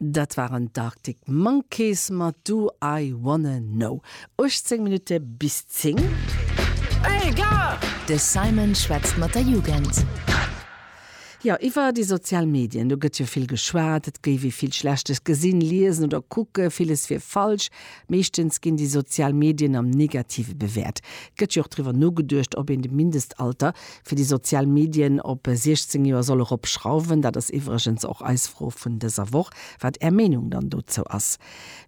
Dat waren d'Arctic Monkeys mat Do I Wanna Know. 18 Minutte bis 10. De Simon schwätzt mat der Jugend. Jo, iwwer déi sozial Medien, do gëtt jo vill geschwat. Et géif ee vill Schlechtes gesinn, liesen oder kucken. Villes wier falsch. Meeschtens ginn déi sozial Medien am Negative bewäert. Et gëtt jo och driwwer nogeduecht, ob een de Mindestalter Fir déi sozial Medien op 16 Joer soll erop schrauwen, dat ass iwwregens och eis Fro vun dëser Woch, wat Är Meenung dann dozou ass.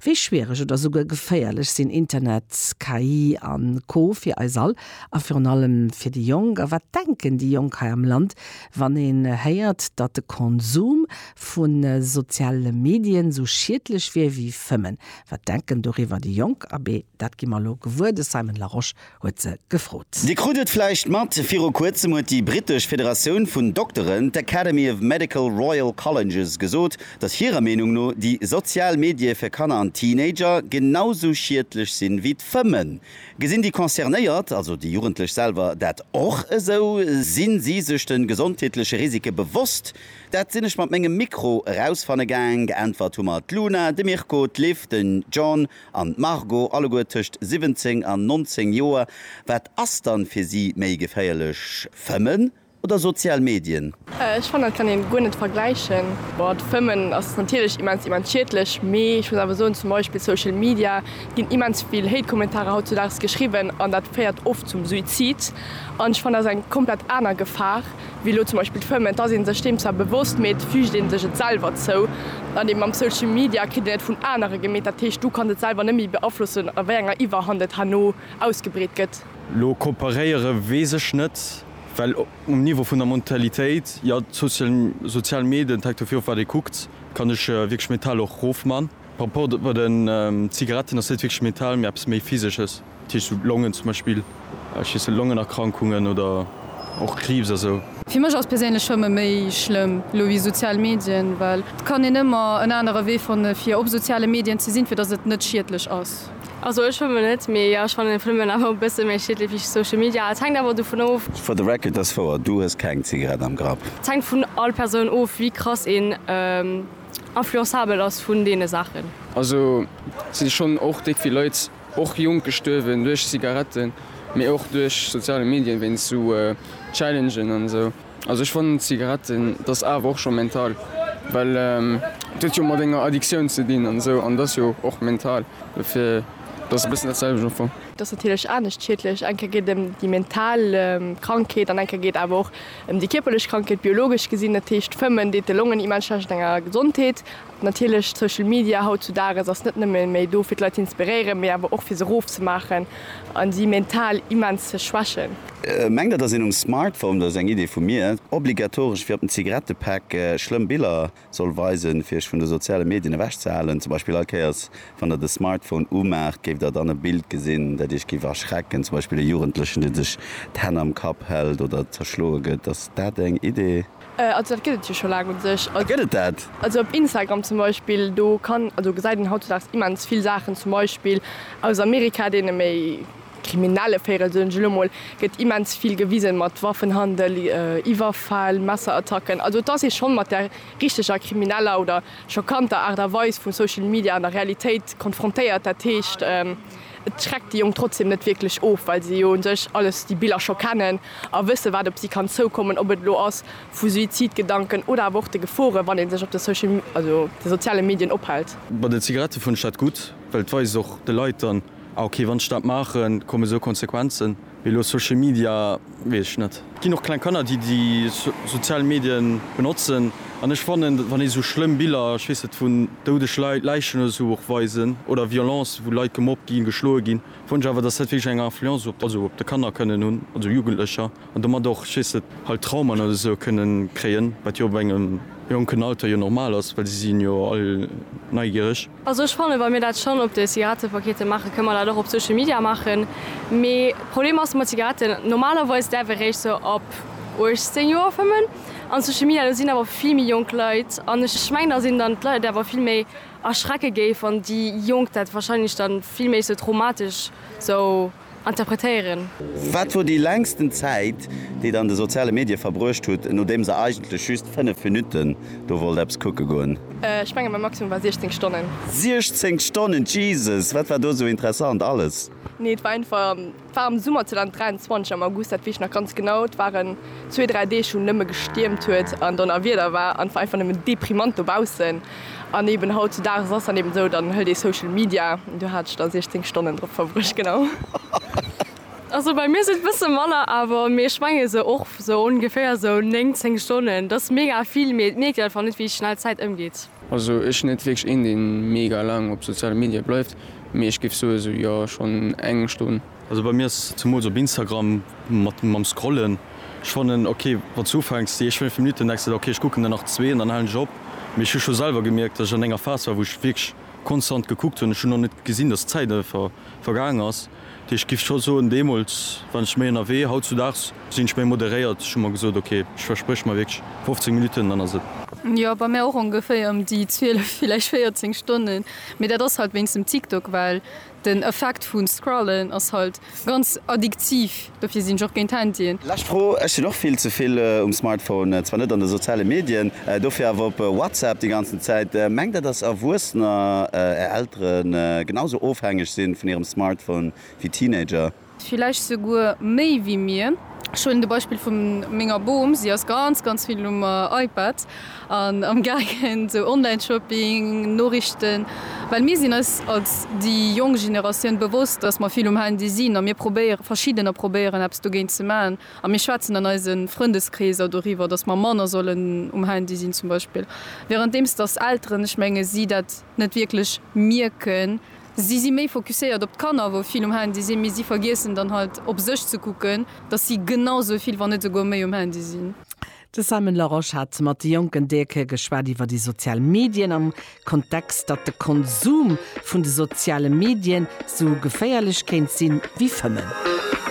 Wéi schwiereg oder souguer geféierlech sinn Internet, KI a Co fir eis all a virun allem fir déi Jonk? A wat denken déi Jonk hei am Land, wann een héiert, datt de Konsum vu soziale Medien sou schiedlech wier wéi fëmmen? Wat denken doriwwer déi Jonk? Abee, dat gi mer elo gewuer. De Simon Larosche huet se gefrot. Dir krut et vläicht mat, viru kuerzem huet déi britesch Federatioun vun Dokteren, d'Academy of Medical Royal Colleges, gesot, datt hirer Meenung no déi sozial Medie fir Kanner an Teenager genau sou schiedlech sinn ewéi d'Fëmmen. Gesinn déi Concernéiert, also déi Jugendlech selwer, dat och esou? Sinn si sech de gesondheetleche Risike bewosst? Dat sinn ech mat mengem Mikro erausfanne gaang. Geäntwert hu mer d'Luna, de Mirko, d'Liv, den John, An d'Margot, alleguer tëscht 17 an 19 Joer, wat ass dann fir si méi geféierlech, Fëmmen oder sozial Medien? Ech fannen dat kann een guer net vergläichen. Boah d'Fëmmen ass natierlech immens immens schiedlech, mee ech muss awer soen zum Beispill Social Media ginn immens vill Hate Kommentarer haut zu Daags geschriwwen an dat féiert oft zum Suizid an ech fannen dat ass eng komplett aner Gefahr. wéi elo zum Beispill d'Fëmmen, et ass ee sech deem zwar bewosst, mee et füügt ee sech et selwer zou. Dann ee mam Social Media kritt een et vun anere gemeet, dat heescht du kanns et selwer net méi beaflossen, a wéi enger Iwwerhand et herno ausgebreet gëtt. Elo komparéiere weess ech net, well um Niveau vun der Mentalitéit, jo sozial Medien, hänkt dovir of wat ee kuckt, kann ech wierklech mental och rofman. Par rapport bei den Zigaretten ass dat wierklech mental, mee eppes méi physesches. Ticht sou Longen zum Beispill, ech heessen Longenerkrankungen oder och Kriibs a sou. Fir mech ass perséinlech Schwëmme méi schlëmm elo wéi sozial Medien, well et kann een ëmmer en anere Wee fanne fir op soziale Medien ze sinn, fir datt et net schiedlech ass. Also ech schwëmmen net, mee jo ech fannen Fwëmmen awer e bësse méi schiedlech wéi Social Media. Et hänkt awer dovun of. For the record, dass wouer, du hues keng Zigarett am Grapp. Et hänkt vun all Persoun of wéi krass een influenzabel ass vun deene Saachen. Also si schonn och déck wéi Leit. Och Jonk gestuerwen duerch Zigaretten, mee och duerch soziale Medien wéinst sou Challengen an esou. Also ech fannen Zigaretten dat ass awer och scho mental, well et huet jo mat enger Addiktioun ze dinn an esou an et ass jo och mental, dofir dat ass e bëssen dat selwecht am Fong. Et ass natierlech anescht schiedlech, eng Kéier geet et ëm déi mental Krankheet an eng Kéier geet et awer och ëm déi kierperlech Krankheet, biologesch gesinn. Dat heescht, Fëmmen deet de Longen immens schlecht an enger Gesondheet. Natierlech, Social Media haut zu Dages ass net nëmme méi do fir d'Leit ze inspiréieren, mee awer och fir se rof ze maachen a si mental immens ze schwächen. Mengt der dass een um Smartphone, dat ass eng Idee vu mir, obligatoresch wéi op den Zigarettepäck schlëmm Biller soll weisen fir iech vun de soziale Medien ewech ze halen? Zum Beispill all Kéiers wann der de Smartphone umaacht géift der dann e Bild gesinn dat iech géif erschrecken, zum Beispill e Jugendlechen dee sech d'Hänn am Kapp hält oder zerschloe gëtt. Ass dat eng Idee? Also dat gëtt et jo scho laang u sech. Ah gëtt et dat? Also op Instagram zum Beispill, do kann, also gesäit een hautdesdaags immens vill Saachen, zum Beispill aus Amerika, deene méi kriminelle Véirel, soen ech elo mol, gëtt immens vill gewisen, mat Waffenhandel, Iwwerfäll, Messerattacken. Also et ass ee schonn mat der richteger krimineller oder schockanter Aart a Weis vu Social Media an der Realitéit konfrontéiert. Dat heescht. Et schreckt déi Jonk trotzdeem net wierklech of, well se jo un sech alles, déi Biller scho kennen a wëssen, wat op si kann zoukommen, ob et elo ass vu Suizidgedanken oder awer och de Gefore wann ee sech op de Social, also de soziale Medien ophält. Bei den Zigarette fënnt ech dat gutt, well et weist och de Leit dann, ah okay, wann ech dat maachen, kommen esou Konsequenzen. Elo Social Media, weess ech net. Et ginn och kleng Kanner, déi déi sozial Medien benotzen. An ech fannen, wann ee sou schlëmm Biller, ech weess net, vun doudeg Leit, Läichen oder sou och weisen, oder Violencë wou Leit gemobbt ginn, geschloe ginn, fannen ech awer, dass dat wierklech eng Influence op, also op de Kanner kënnen hunn, also Jugendlecher, an domat och, ech weess net, halt Traumen oder sou kënnen kréien, wat jo op engem jonken Alter jo normal ass, well si sinn jo all neigiereg. Also ech fannen, wa mir dat schonn op de Zigarettepakete maachen, kënne mer dat och op Social Media maachen. Mee Problem ass mat Zigaretten, normalerweis däerf ee réischt sou ab 18 Joer fëmmen. An Social Media, do sinn awer vill méi jonk Leit. An ech mengen, datt een dann d'Leit awer vill méi erschrecke géif, wann déi Jonk dat wahrscheinlech dann vill méi sou traumatesch sou. interpretéieren. Wat wor déi längsten Zäit, déi der an de soziale Medie verbruecht hutt, nodeems der eigentlech just 5 Minutten do wollt eppes kucke goen? Ech mengen mäi Maximum war 16 Stonnen. 16 Stonnen, Jesus! Wat war do esou interessant alles? Nee, et war einfach, et war am Summer 2023 am August, dat weess ech nach ganz genau. Et waren zwee, dräi Deeg wou nëmme gestiermt huet an Donnerwieder war an et war einfach nëmmen deprimant dobaussen. An eben hautzudages ass dann eben esou, dann hëlt ee Social Media, an do hat ech da 16 Stonnen drop verbruecht, genau. Also bei mir sinn et bësse manner awer, mee ech menge sou och sou ongeféier sou 9, 10 Stonnen. Dat ass mega vill, mee et mierkt een einfach net, wéi schnell d'Zäit ëmgeet. Also ech sinn net wierklech een, dee mega laang op soziale Medie bleift, mee ech géif soe sou, jo, schonn eng Stonn. Also bei mir ass zemools op Instagram mat mam scrollen, ech fannen ok wanns du ufänks déi éischt 5 Minuten denks de der ok ech kucken der nach zwee an dann halen ech op, mee ech hu scho selwer gemierkt dass ech an enger Phase war wou ech wierklech konstant gekuckt hunn, ech hunn och net gesinn dass d'Zäit einfach vergaang ass, dat heescht ech giff scho soen deemools waren ech méi ënnerwee, hautzudags sinn ech méi moderéiert, ech hu mer gesot ok ech verspréch mer wierklech 15 Minuten dann ass et. Jo bei mir och ongeféier ëm déi 12 villäicht 14 Stonnen, mee dat ass halt wéinst dem TikTok, well Den Effekt vun Scrollen ass halt ganz addiktiv, dofir sin ech och géint Handyen. Lescht Fro, Ech sin och vill zevill um Smartphone, zwar net an de soziale Medien, dofir awer op WhatsApp déi ganzen Zäit. Mengt der dass Erwuessener, är Elteren, genau sou ofhängeg sin vun hirem Smartphone wéi Teenager? Villäicht souguer méi wéi mir. Ech huelen de Beispill vu menger Bom, si ass ganz ganz vill um iPad an am gaangen sou Online Shopping, Noriichten, well mir sinn eis als déi jonk Generatioun bewosst, dass mer vill um Handy sinn a mir probéieren, verschiddener probéieren eppes dogéint ze maachen a mir schwätzen an eise Frëndeskreeser doriwwer, dass mer manner sollen um Handy sinn zum Beispill, währenddeems dass Elteren, ech menge si dat net wierklech mierken. Si si méi focuséiert op d'Kanner, wou vill um Handy sinn, mee si vergiessen dann halt op sech ze kucken, dass si genau sou vill, wann net souguer méi um Handy sinn. De Simon Laroche hat mat de jonken Deeke geschwat iwwer déi sozial Medien am Kontext, datt de Konsum vun de soziale Medien sou geféierlech kéint sinn, wéi Fëmmen.